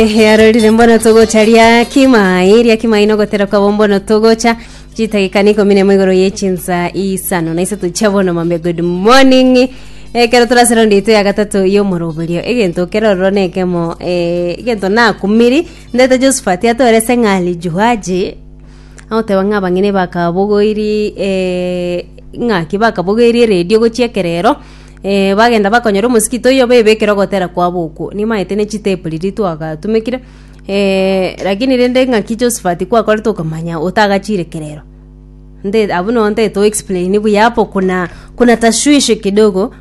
Earo rire mbono togocha ria kimai ria kimai na ogotera kwabo mbono togocha chitagika ni ikomi nemo igoro ye chinsa isano na isato chia bono mambe good morning ekero torase rondi yaito ya gatato y'omoroberio egento kerororo na ekemo eh, egento nakumiri ndete josephat atorese ng'ali juaji agoteba ng'a abang'ina bakabogoiri eh, ng'aki bakabogoiri eredio gochia ekerero Eh, bagenda bakonyora omosikito oyio baebekere ogotera kwabo okwo, nimaete ne chitepu riria twagatumekire eh, lakini rende ng'aki Josephat kwakorete okomanya otagachire kerero nde abwo no ntete o explain buya hapo kuna kuna tashwishi kidogo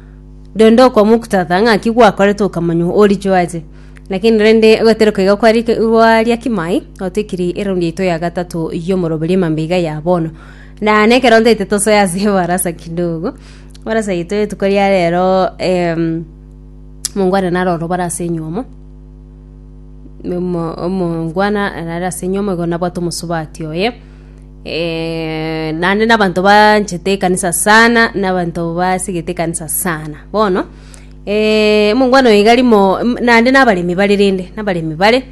rende okwa muktadha ng'aki gwakorete okamanya orichio ache lakini rende goteroka iga kwari gwaria kimai otwekiri eround yaito ya gatato yomoroberio mambia iga ya bono na nekero ntete tosoe ase ebarasa kidogo Bono ase yaito rituko ria rero em, omongwana naro orobare ase enyomo omo- omongwana nare ase enyomo igo nabwate omosubati oye eh, naende na abanto banchete ekanisa sana, na abanto basigete ekanisa sana. Bono eh, omongwana oyo iga rimo mm- naende na abaremi bare rende, na abaremi bare,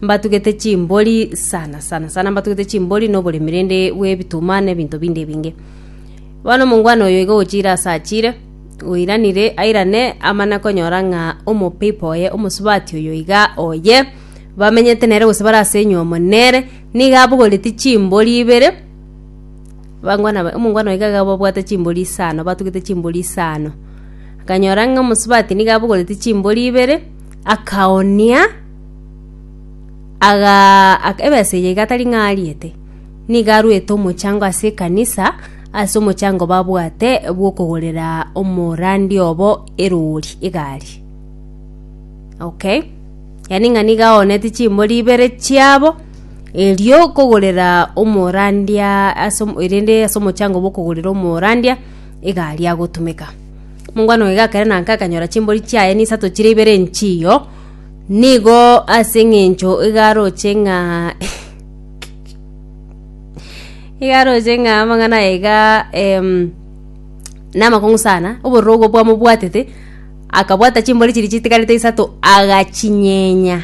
mbatugete chimbori sana sana sana mbatugete chimbori na oboremi rende bwa ebituma na ebinto binde ebinge. Bono omongwana oyo iga ogochiire aase achiire, oiranire airane amana konyora ng'a omopeipa oye, omosubati oyo iga oye, bamenyete nere gose bare ase enyomo nere, nigo abogoretie chimbori ibere, bangwana ba- omongwana oyo iga iga babwate chimbori isano, batugete chimbori isano. Akanyora ng'a omosubati nigo abogoretie chimbori ibere, akaoonia, agaa aka ebesa eye iga tari ng'a ariete. Nigo arwete omochango ase ekanisa ase omochango babwate bw'okogorera omorandi obo erori, egari. Okay? Yani ng'a nigo aonete chimbori ibere chiabo erio kogorera omorandia ase omo- erende ase omochango bw'okogorera omorandia egari agotumeka. Mokwana oye gakere na nka akanyora chimbori chiaye nisato chire ibere enchiyo, nigo ase eng'encho iga aroche ng'a. igaroche ng'a amang'ana aya iga em, namakong'u sana obororo obwo bwamobwatete akabwata chimbori chiria chitigarete isato agachinyenya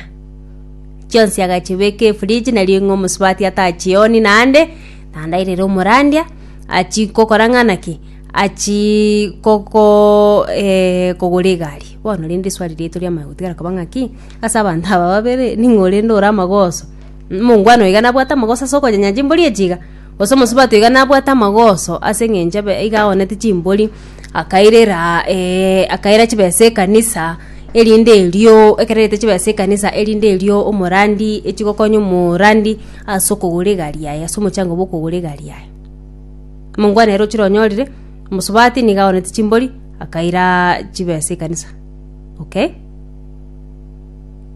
chionsi agachibeka efridge nari ng'a omosubati atachioni naende naende airere omorandia achikokora ng'a naki achii koko eh, kogora egari bono rende eswali riaito riamanya gotigara koba ng'aki ase abanto aba babere ning'o rende ore amagoso. Omongwana oiga nabwate amagoso ase okonyenya chimbori echi iga, gose omosubati oiga nabwate amagoso ase eng'encho ebe iga aonete chimbori, akairera eh, akaira chibesa ekanisa, erinde erio, ekero airete chibesa ekanisa erinde erio omorandi echi gokonya omorandi ase okogora egari yaye ase omochango bwa okogora egari yaye. Omongwana ere ochire onyorire, omosubati nigo aonete chimbori, akaira chibesa ekanisa, okay.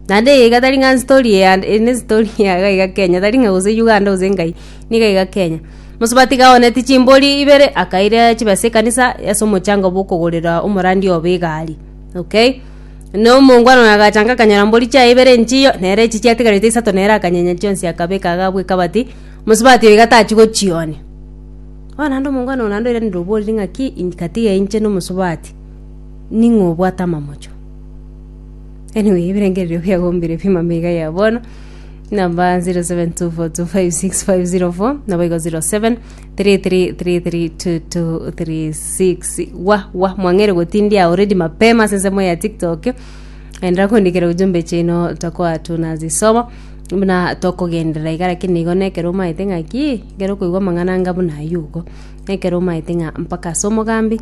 Naende eye iga tari ng'a story ya ene story ya iga iga Kenya tari ng'a gose Uganda gose nkai niga iga Kenya. Mosubati iga aoneti chimbori ibere akaira chibesa ekanisa ase omochango bwa okogorera omorandi obe egari okay. Na omongwana oyo agachanga akanyora mbori chiaye ibere enchiyo nere echi chiatigarete isato nere akanyenya chionsi akabeka iga bwa ekabati mosubati oyo iga tachi gochionia. Bono naende omongwana oyo naende oirane oboriri ng'aki ink tiga inche na omosubati ning'o obwate amamocho. Anyway, ebirengererio biagombire pi mama iga ya bono. Namba 0724256504 nabo igo 07 33332236 wa wa mwang'ere gotindia already mapema ase ensemo ya TikTok. Endera kondikera ujumbe chino tokoa tunazisoma buna tokogenderera iga lakini igo nekero omaete ng'aki ekero okoigwa amang'ana anga buna ayio igo nekero omaete ng'a mpaka ase omogambi